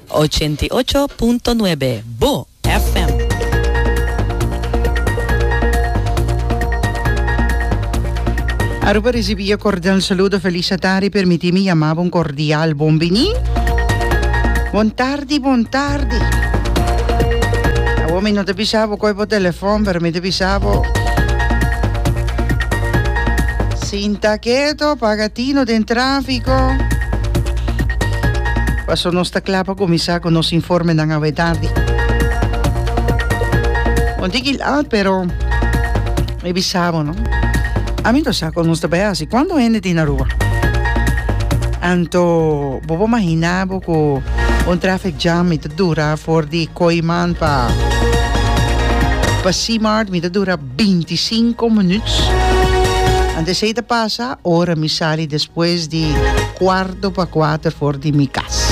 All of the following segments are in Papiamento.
Ochenta i ocho punto nuebe, bo FM. Aruba risibí e kordel saludo felis atari permití mi yamá bo un kordial bon biní bon tardi bon tardi awor mi no ta bisa bo koi bo telefòn pero mi ta bisa bo. Sin ta keto paga tino den trafiko. Paso nos ta kla pa kuminsá ku nos informenan awe tardi. Un tiki lat pero mi bisa bo no. Ami no sa kon nos ta bai hasi. Kuantu hende tin na Aruba? Anto bo por imaginá bo ku un traffic jam mi ta dura for di Koiman pa pa C-Mart mi ta dura binti sinku minuts. Antes esei ta pasa ora mi sali despues di kuarto pa kuater for di mi kas.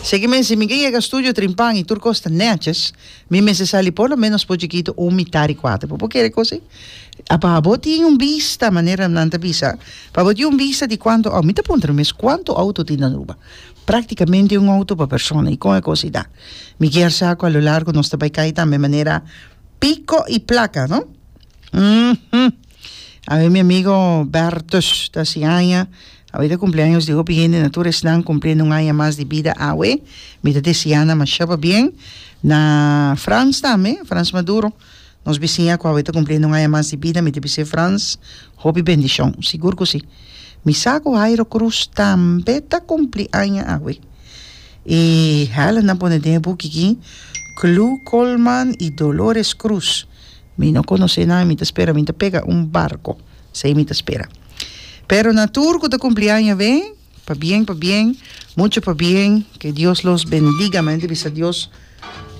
Seki mester mi ke yega studio trimpan i tur kos ta neches, mi mester sali por lo menos pochi kitu un mitá di kuater. Bo por kere kosi? A pa bo tin un bista, manera nan ta bisa, pa bo tin un bista di kuantu au-, mi ta puntra mi mes, kuantu outo tin Aruba? Praktikamente un outo pa persona. I kon e kosi ta? Mi kier sa ku a lo largu nos ta bai kai tambe manera Pico y placa, no? Mm -hmm. A ver, mi amigo Bertus, ta si aña. A ver, de cumpleaños de hopi gente, na tur esnan cumpliendo un aña mas di vida awe. Mi ta deseana masha pa bien. Na Frans tambe, Frans Maduro, nos bisiña cu awe ta cumpliendo un aña mas di vida. Mi ta bis'é Frans, hopi bendicion. Sigur cu si. Mi sa cu Jairo Cruz tambe ta cumpli aña awe. E helen a pone den e buki ki Clu Colman y Dolores Cruz mi no conoce nan mi ta spera mi ta pega un barco esey mi ta spera pero na tur cu ta cumpli aña awe pa bien pa bien mucho pa bien que Dios los bendiga mente bisa Dios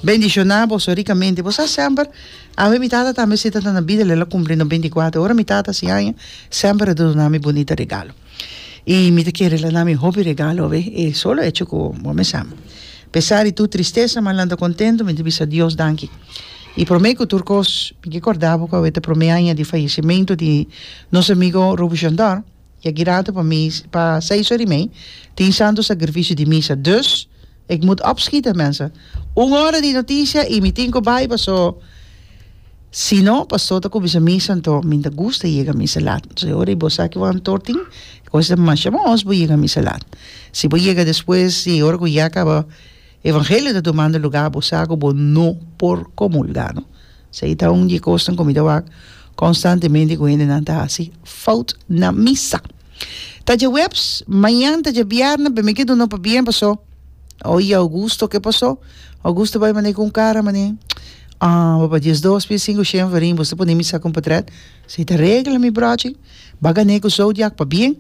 bendiciona boso ricamente bo sa semper awe mi tata tambe si ta na bida el a cumpli no binti y cuater ora mi tata a hasi aña semper a duna mi bonita regalo. I mi ta kere lana mi hopi regalo awe e solo echo ku bo mi sa. Pesa di tur tristesa manan ta kontento mi ta bisa Dios danki. I prome ku tur kos mi ke korda bo ku awe ta prome aña di fayesementu di nos amigo Ruby Shondor i aki rato pa mi pa seis ora i mei tin Santo Sakrifisio di Misa. Dus. Ik moet opschieten mensen. Un ora di noticia y mi tin cu bay paso si no pastor ta cuminsa misa anto mi ta gusta yega misa laat. Entonces ora y bo sa cu bo antor tin e cosa ta masha bon os bo yega misa laat. Si bo yega despues di ora cu ya caba evangelio ta tomando lugar bo sa cu bo no por comulga no. Sa i ta un di e kosnan ku mi ta wak konstantemente ku hendenan ta hasi fout na misa. Ta djaweps, mañan ta djabierna, bembe ke duna pa bien pasó. Oye Augusto, ke pasó? Augusto bai manei ku un kara manei, Ah, bo pa dies dos pia sinku shen farin, bo sta pone misa kompatret? Sa i ta regla mi bròchi, ba gané ku zodiak pabien.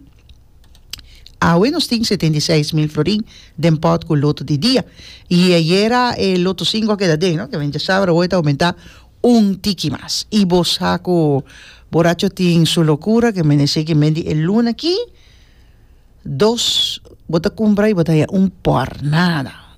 Awe nos tin setenta i seis mil florin den pòt ku loto di dia. I ayera e loto sinko a keda den, no? Ke men dja sabe awe ta oumentá un tiki mas. I bo sa ku boracho tin su lokura ke menesé ki men di e luna akí, dos bo ta kumpra i bo ta haña un pòrnada.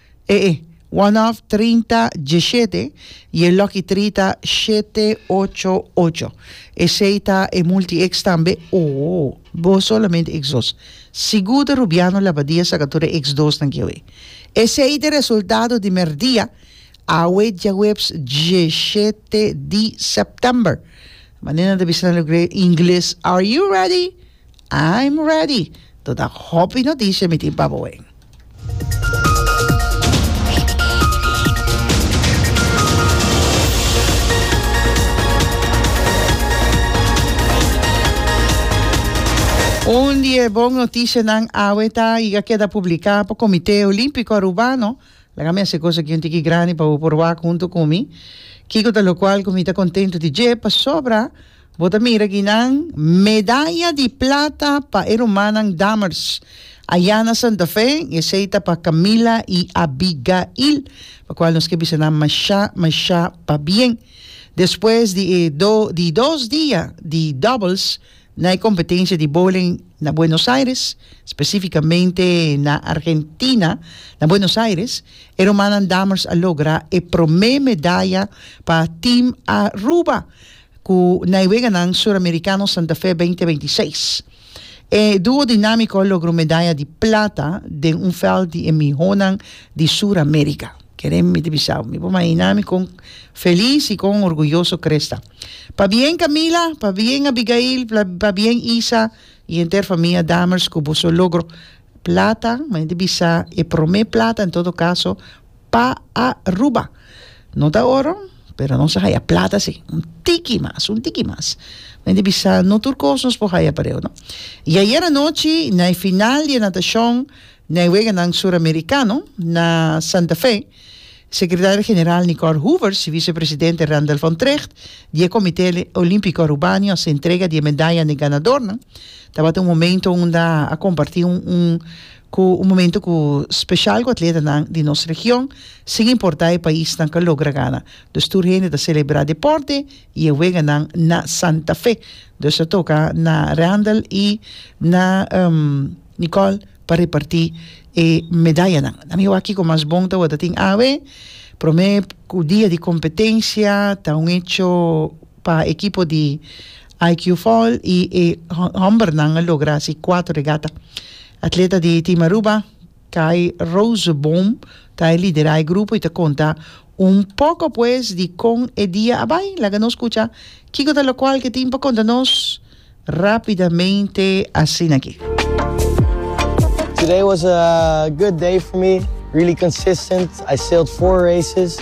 E e, one off trinta diesete y e lucky three ta shete ocho ocho. Esey ta e multi ex tambe oh bo solamente ex dos. Sigur ta Rubiano Labadia sa ka tur e ex dos nan kiawe. Esey ta e resultado di merdia awe diahuebs diesete di september. Manera nan ta bisa nan lugre ingles are you ready? I'm ready! Tot a hopi noticia mi tin pa boen. Un di e bon noticianan awe ta y a keda publica pa Comite Olimpico Arubano. Laga mi a haci cosa ki un tiki grandi pa bo por wak hunto cu mi. Kico ta locual cu mi ta contento di dje? Pasobra. Bo ta mira ginan medaya di plata pa e rumannan Dammers ayá na Santa Fe, esei ta pa Camila i Abigail, pa cual nos ke bisa nan mashá, mashá pabien. Despues di e do di dos dia di doubles na e competencia di bowling na Buenos Aires, specificamente na Argentina, na Buenos Aires, e rumannan Dammers a logra e prome medaya pa Team Aruba. Ku Naiweganan Suramerikano Santa Fe beinti beinti seis, e duo dinamiko a logró medaya di plata den un vèlt di e mihonan di Suramerika. Keren mi ta bisa bo, mi por mahiná mi kon felis i kon orguyoso Chris ta. Pabien Camila, pabien Abigail, pabien Isa i henter famia Dammers ku boso logro plata, mi ta bisa e promé plata en todo kaso, pa Aruba. No ta oro, pero nos a haya plata sí. Un tiki mas, un tiki mas. Mi ta bisa, no tur cos nos por haya pareu, no. Y ayer anochi, na e final di e natacion, na e weganan Suramericano, na Santa Fe, Secretario General Nicole Hoover, si Vicepresidente Randall van Trecht, di e Comité Olimpico Arubano, a haci entrega di e medaya na e ganadornan. Tabata un momento unda a comparti un, un. Cu un momento cu special cu atletanan di nos region, sin importa e pais nan ca logra gana. Dus tur hende ta celebra deporte y e weganan na Santa Fe. Dus ta toca na Randall y na Nicole pa reparti e medayanan. Nan mi wak kico mas bon ta word atin awe. Prome dia di competencia ta un hecho pa ekipo di IQ Foil y e hombernan a logra haci cuatro regata. Atleta di Team Aruba, Kai Rozeboom, ta e lidera e grupo y ta conta un poco pues di con e dia a bay. Laga nos scucha kico ta locual ke tin pa conta nos rapidamente asina aki. Today was a good day for me, really consistent, I sailed four races.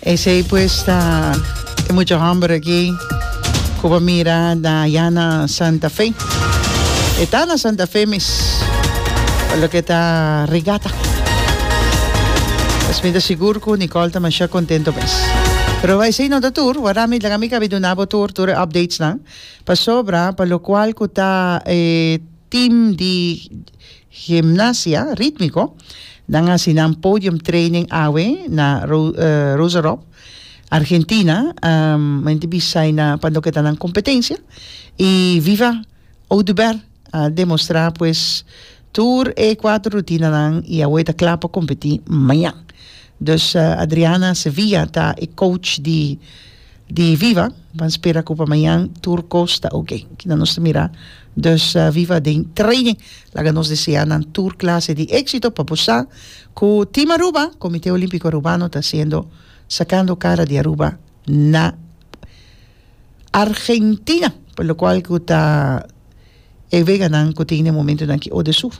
Esey pues ta e mucha homber aki cu bo mira ta ya na Santa Fe. E ta na Santa Fe mes, pa loke ta Rigata. Pues mi ta sigur cu Nicole ta masha contento mes. Pero esey no ta tur, wardá mi dlaga mi cabi duna bo tur, tur e updatesnan. Pasobra pa locual cu ta e team di. Gimnasia Rítmiko, Nan a hasi nan podium training awe na Rosarope, Argentina, mente bisai na pa loke ta nan competencia y viva Oduber a demostra pues tur e cuatro rutinanan y awe ta cla pa competi mañan. Dus Adriana Sevilla ta e coach di. di viva pan spera cu pamañan tur cos ta oke kina nos ta mira dus viva den training laga nos desea nan tur clase di exito pa bo sa cu team Aruba comite olimpico Arubano ta haciendo sacando cara di Aruba na Argentina por lo cual cu ta e veganan cu tin e momentonan ki ode su.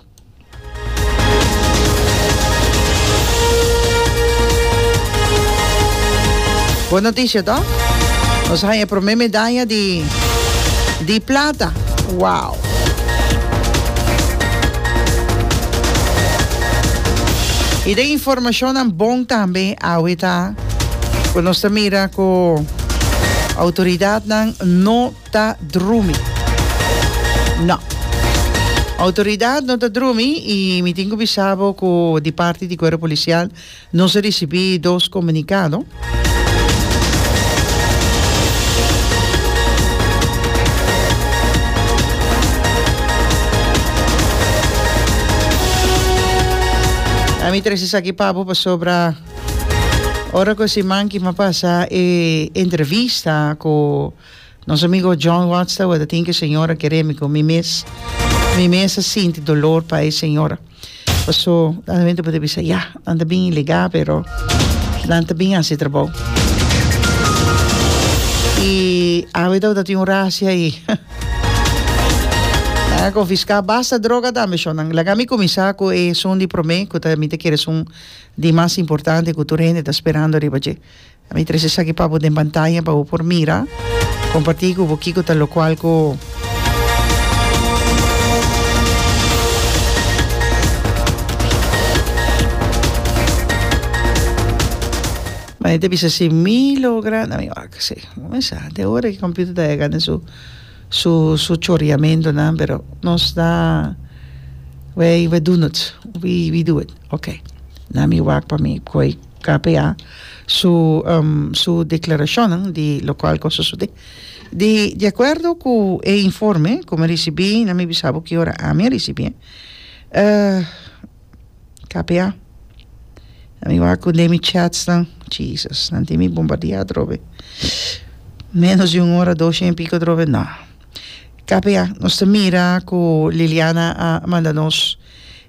Bon noticia toch? Nos haña e prome medaya di, di plata. Wow! Y den informacionnan bon tambe awe ta cu nos ta mira cu autoridadnan no ta drumi. No. Outoridat no ta drumi i mi tin ku bisa bo ku di parti di kuerpo polisial nos a risibí dos komunikado. A mi trese esaki pa bo pasobra ora ku e siman ki mi a pasa e entrevista ku Nos amigo John Watts ta worde tin ku e señora kere mi ku mi mes mi mes a sinti dolor pa e señora paso nan wen ta por bisa ya nan ta bin ilegal pero nan ta bin hasi trabou y awe ta worde tin un rashi ahi nan a konfiska basta droga tambe shon nan laga mi kuminsa ku e esun di prome ku ta mi ta kere esun di mas importante ku tur hende ta sperando riba dje Mi trae esaki pa bo den pantaya pa bo por mira. Comparti cu bo kico ta locual cu Maria ta bisa si mi logra na mi wak si mi mesa de ora ki computer ta hega den su su su choriamentonan pero nos ta we we do not we we do it okay na mi wak pa mi coy KPA, su su declaracionnan di locual cu a sosode. Di di acuerdo cu e informe cu mi ricibi, na mi bisa bo ki ora ami a ricibi e. KPA, na mi wak cu den mi chatsnan, Jesus, nan tin mi bombardea atrobe. Menos di un ora, dos y en pico atrobe, no. KPA, nos ta mira cu Liliana a manda nos.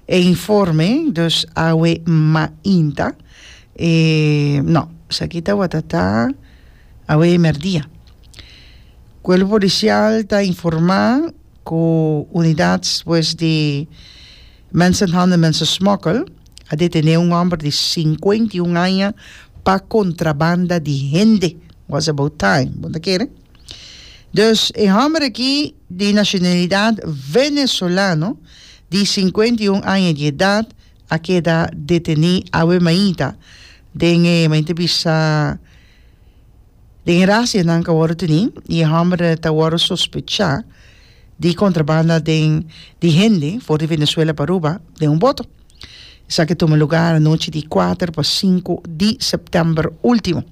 E informe, dus awe mainta, e, no, esaki tabata ta awe merdia. Cuerpo Policial ta informa cu unidad pues di mensenhandel en mensensmokkel a detene un homber di cincuenta y un aña pa contrabanda di hende, was about time, bo ta kere. Dus e hòmber aki di nashonalidat venesolano di sinkuenta i un aña di edat a keda detené awe mainta den e main ta bisa den e rasia nan ka wòrdu tení i e hòmber ta wòrdu sospechá di kontrabanda den di hende for di Venezuela pa Aruba den un boto. Esaki tuma lugá anochi di kuater pa sinku di sèptèmber último.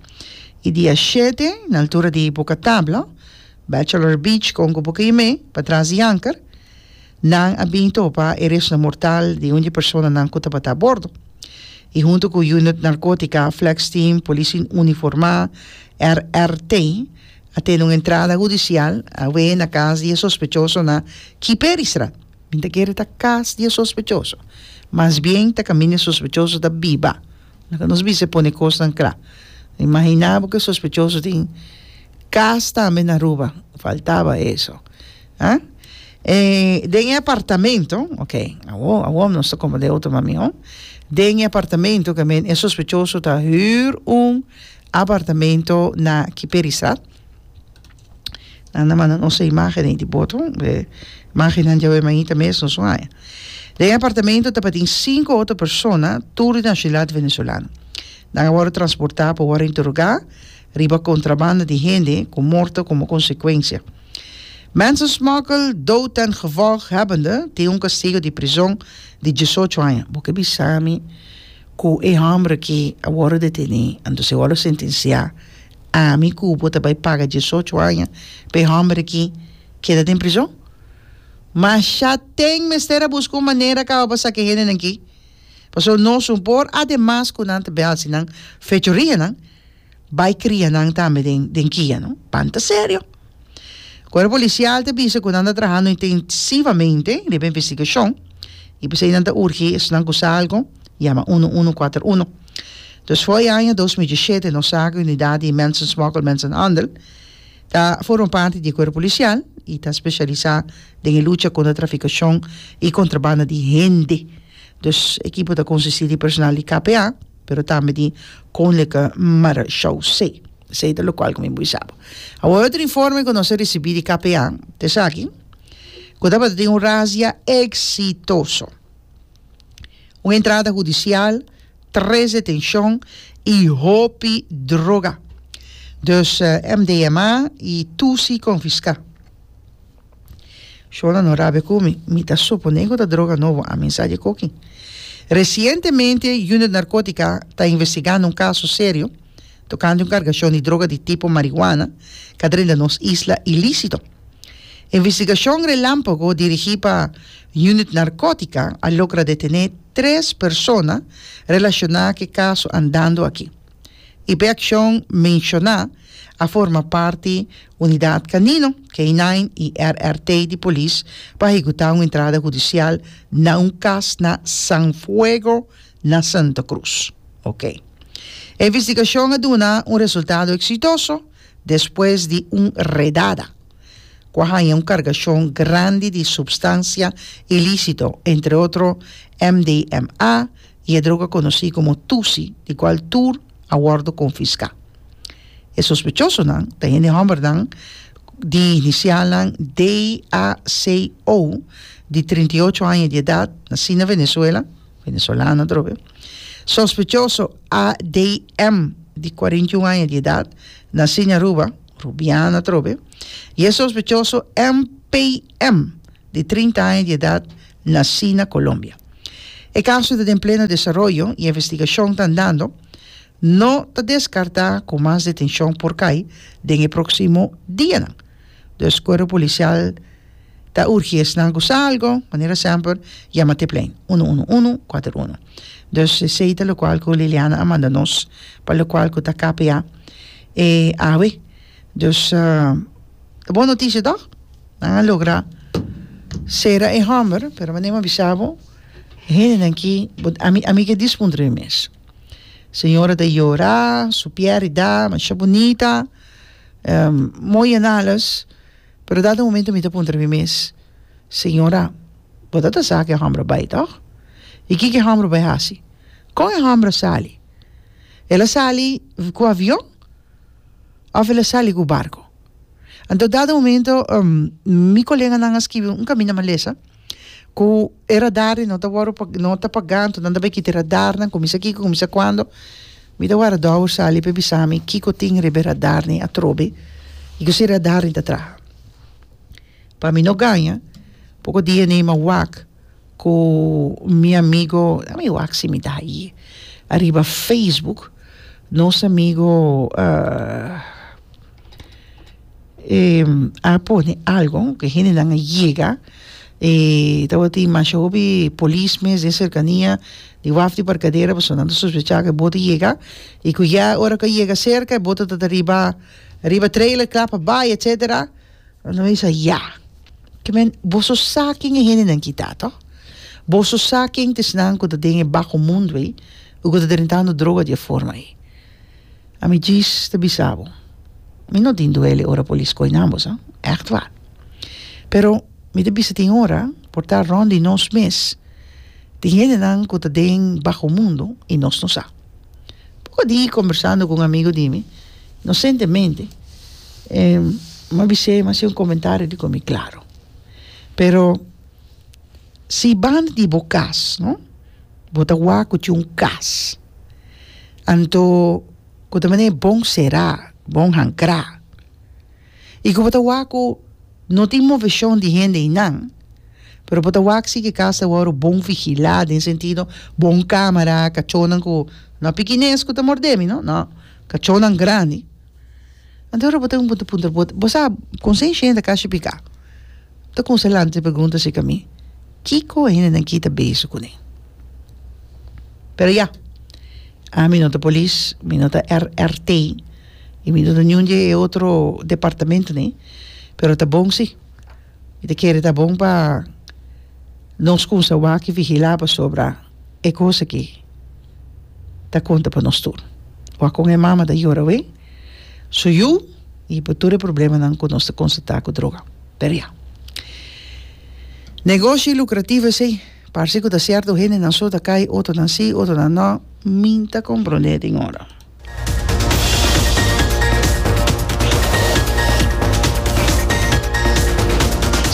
I dia shete, na altura di Buka Tabla, Bachelor Beach, Konko Buka Yemé, patras di anker, nan a bin topa e resnan mortal di un di personanan ku tabata abordo. I huntu ku Unit Narkótika, Flex Team, Polisi Uniformá, RRT, a tene un entrada hudisial awe na kas di e sospechosonan Kiperistra. Bin ta kere ta kas di e sospechoso. Mas bien ta kaminda e sospechoso ta biba. Laga nos bisa e pone kosnan kla. Imaginá bo ku e sospechoso tin kas tambe na Aruba. Faltaba eso. Ha? E den e apartamento, ok, awor, awor nos ta komprendé otro mas mihó. Den e apartamento ke men e sospechoso ta hür un apartamento na Kiperistraat. Nan a manda nos e imágenes ahí di boto. E imágenes dja wema ahí ta mes nos un aña. Den e apartamento tabatin cinco otro persona, tur di nacionalidad venezolano. Nan a wòrdu transportá pa wòrdu interogá riba contrabando di hende cu morto como consecuencia. Mensensmokkel, dood ten gevolg hebbende, tin un castigo di prizon di diesocho aña. Bo ke bisa mi cu e hombre aki a wòrdu detené, anto si a wòrdu sentenciá. Ami ku bo ta bai paga diesocho aña pa e hòmber aki keda den prizòn? Mashá tèn mester a buska un manera kaba pa saka e hendenan aki, pasobra nos un por ademas ku nan ta bai hasi nan fechorianan, bai kria nan tambe den den kia, no? Banta serio! Kuerpo Polisial ta bisa ku nan ta trahando intensivamente riba e investigashon i p'esei nan ta urgi esnan ku sa algu yama uno uno kuater uno. Dus for e aña dos mil diesshete nos sa ku unidat di mensensmokkel, mensenhandel, ta forma parti di e kuerpo polisial i ta spesialisá den e lucha kontra trafikashon i kontrabanda di hende. Dus e ekipo ta konsistí di personal di KPA pero tambe di Koninklijke Marechaussee. Esei ta lokual ku mi bo bisa bo. Awor otro informe ku nos a risibí di KPA ta esaki, ku tabata tin un razia eksitoso. un entrada hudicial, tres detencion y hopi droga. Dus MDMA y Tusi confisca. Shona no rabia cu mi, mi ta supone cu ta droga nobo, a mensa dje coki. Recientemente Unit Narcotica ta investigando un caso serio tocante un cargacion di droga di tipo marihuana ca drenta nos isla ilicito. Investigashon Relámpago dirigí pa Unit Narkótika a logra detené tres persona relashoná ku e kaso Andando Aki i pa e akshon menshoná a forma parti Unidat Kanino, K-9 i RRT di polis pa hekutá un entrada hudisial na un kas na San Fuego na Santa Krus. Oke. E investigashon a duna un resultado eksitoso. despues di un redada ku a haña un kargashon grandi di supstansia ilísito, entre otro MDMA i e droga konosí komo Tusi, di kual tur a wòrdu konfiská. E sospechosonan ta hende hòmbernan di inisialnan DACO, di trinta i ocho aña di edat, nasí na Venezuela, Venezolano dor be. Sospechoso ADM di 41 aña di edad, nací na Aruba, Rubiana dor be, y e sospechoso MPM di 30 aña di edad, nací na Colombia. E caso ta den pleno desaroyo y investigacion ta andando, no ta descarta cu mas detencion por cay den e proximo dianan. Dus cuerpo policial. Ta urgi esnan cu sa algo, manera semper, yama te plein uno uno uno cuater uno. Dus esey ta locual cu Liliana a manda nos pa locual cu ta KPA e awe. Dus ta bon noticia toch? Nan a logra cera e homber, pero manera mi a bisa bo, e hendenan aki, bo, ami, ami ke dispuntra mi mes. Señora ta yora, su pierida masha bunita, mooi en alles. Pero dado un momento mi ta puntra mi mes, Señora, bo ta ta sa ku e hòmber a bai, tòg? I kiko e hòmber a bai hasi? Kon e hòmber a sali? El a sali ku avion òf el a sali ku barku? Anto dado un momento mi koleganan a skibi un kaminda malesa. Ku e radarnan no ta wòrdu pa no ta pagá anto nan ta bai kita e radarnan kuminsá kiko kuminsá kuando mi ta wòrdu dò por sali p'e bisa mi kiko tin riba e radarnan atrobe i kosa e radarnan ta traha pa mi no gaña poko dia ei mi a wak ku mi amigu a mi wak si mi ta ahi ariba facebook nos amigu a pone algo ke hendenan a yega y tabatin masha hopi polis mes den serkania di waf di parkadera pasobra nan ta sospecha ke bo ta yega y ku ya ora ku a yega serka e boto ta ta riba riba trailer kla pa bai etcetera nan ta bisa ya ke men boso sa kin e hendenan ki ta toh boso sa ken ta esnan ku ta den e bajo mundo ei o ku ta drentando droga di e forma ei Ami djis ta bisa bo, mi no tin duele ora polis koi nan boso, ègt wàr. Pero mi ta bisa tin ora por ta rònt di nos mes, tin hendenan ku ta den baho mundu i nos no sa. Poko di kombersando ku un amigu di mi nosentemente, e m'ha bis'é e m'ha hasi un komentario di komi, Klaro, pero si banda di bo kas, no? Bo ta wak cu tin un cas. Anto cu ta manera bon sera, bon hancra. Y cu bo ta wak cu no tin movecion di hende eynan, pero bo ta wak si ki cas ta wor bon vigila den sentido bon camera, cachonan cu, no pikines cu ta mordemi, no, no, cachonan grandi. Anto bo ta un punto punto bo bo sa con se shenda ka shipika ta con se lanta pregunta si cami kico hende nan kita beso cune pero ya ami no ta polis mi no ta RRT y mi no ta niun di e otro departamento ne pero ta bon si Mi ta kere ta bon pa nos kumsa wak vigilá pasobra e kos aki ta konta pa nos tur. Wak kon e mama ta yora awé su yu i pa tur e problemanan ku nos ta konstatá ku droga. Pero ya. Negoshi lukrativo esei. Parse ku ta sierto hendenan so ta kai, otronan sí, otronan nò. Mi ta komprondé tin ora.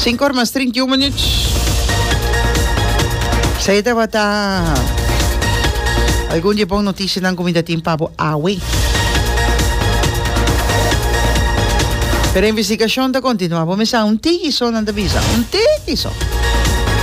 Sinku or mas trinta i un minuut. Sa e tabata algun di e bon notisianan ku mi ta tin pa bo awe. Pero investigashon ta kontinuá. Bo mester sa un tiki so, nan ta bisa. Un tiki so.